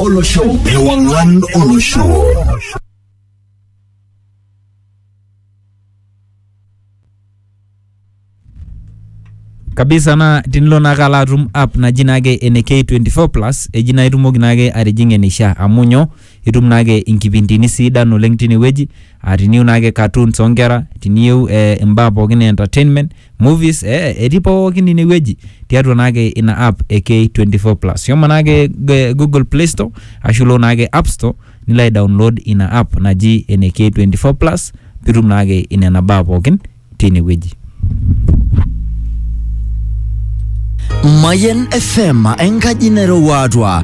olosho ewang'an olosho kabisa naa tinilo naake alo atum app naji naake ene K24 plus eji naa itumoki naake atijing'a eneishaa amu nyoo itum naake inkipindini sidan oleng tinewueji aa tiniyieu naake cartoons oonkera tiniyieu eh, imbaa pookin e entertainment movies eh, etii pookin inewueji tiatua naake ina app e K24 plus shomo naake g- Google Play Store ashu ilo naake App Store nilo ai download ina app naji ene K24 plus pitum naake inena baa pookin tinewueji Mayen FM enkaji nairowua atua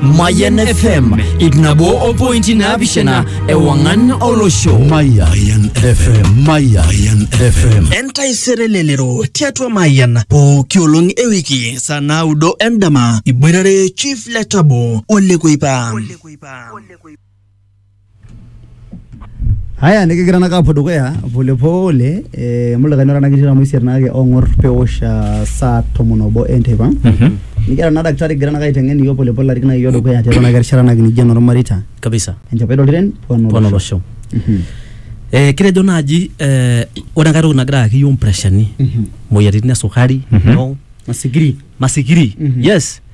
Mayan FM ip nabo o pointi naapishana ewang'an olosho. Mayan FM. Mayan FM. entaisere lelero tiatua mayian pooki olong e wiki saa naudo endama iboitare chief letabo olekuipa Haya nikigira naka apuo dukuya polepole eh, mulikae nara nakitii tamu isiet naake ong'or pewosh ah, saa tomon obo enteipa nikiata naa daktari kigira naka aiteng'en iyiok polepole arik naa iyiok dukuya tiatua naka erishata nakinijia enormareita kabisa enchapai toltiren pon pona olosho Mhm. eh, kitejo naaji eh, ore enkae toki nagira ayaki iyiok mpreshani Mhm. moyiaritin esukari Mhm. no, masikiri masikiri Mhm. yes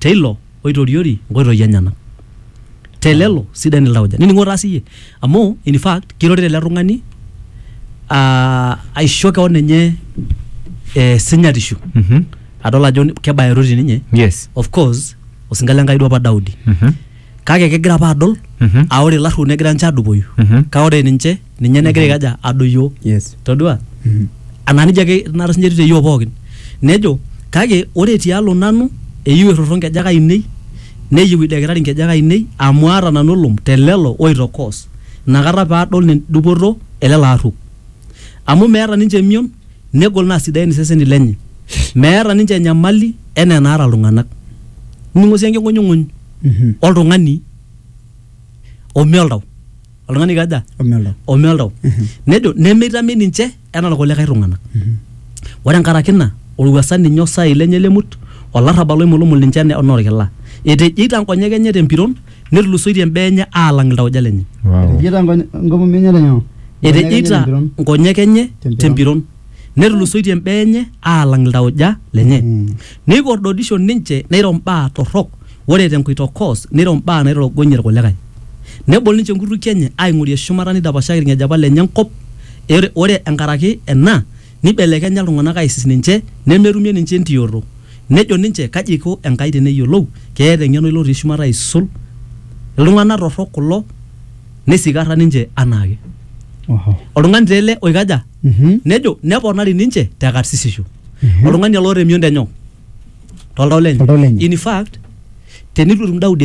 te ilo oitoriori inkoitoi enyenak. Te lelo sidain iltauja. Nining'o taa siyie amu in fact kirorita ele tung'ani aa aisho keon enye eh, sinyatishu Mhm. adol ajo kebayoroti ninye Yes. of course osinka le Nkai duo apa Daudi. Mhm. kake kegira apa adol Mhm. aa ore ilarruok negira ninche adupoyu Mhm. kake ore ninche ninye negira aikaja adoyio yes todua anaa nijia ake tenakata sinye etiu te yiok pookin nejo kake ore tialo nanu eyieu errorro nkejek ainei neyieu idekitari nkejek ainei amu aata nanu olom te lelo oitokoos inakata paadol nen- dupoto e lelo arruok amu meeta ninche emion negol naa sidain iseseni lenye meeta ninche enyamali enaa enaata iltung'anak nining'o sii enking'unyung'uny Mhm. oltung'ani ome oltau oltung'ani kaja Omelda. ome oltau Mhm. nejo nemeitami ninche enaa irkulikae tung'anak Mhm. ore enkaraki ina olwuasa ninye osai lenye lemut olarrabal oimulumul ninche ene- enaa orkila etejeita nkonyek enye tempiron netulusoitie imbaa enye aalang iltauja lenye Wow. Etejeita nkonye- nkomomi enye tenyoo? etejeita Tempiron. nkonyek enye Tempiron. tempiron netulusoitie imbaa enye aalang iltauja lenye Mm. neikordodisho ninche neiro mbaa torrok ore te nkuitokos neiro imbaa naitorogonyie ilkulikae. Nebol ninche inkutukie enye aaing'orie shumata neidapashaki ilng'ejepa lenye enkop, ore enkaraki ena neibelekenya iltung'ana aaisis ninche nemetumie ninche entiyoto. Nejo ninche, Kaji eiko Enkai teneyiolou? Keeta eng'eno ilo otii shumata aisul? Iltung'ana torrok kulo neisikarra ninche anaake. Oltung'ani taa ele oikaja? Mhm. nejo neponari ninche te karsisisho oltung'ani ele oota emion tenyoo toltau lenye Toltau lenye. in fact tenitu etum daudi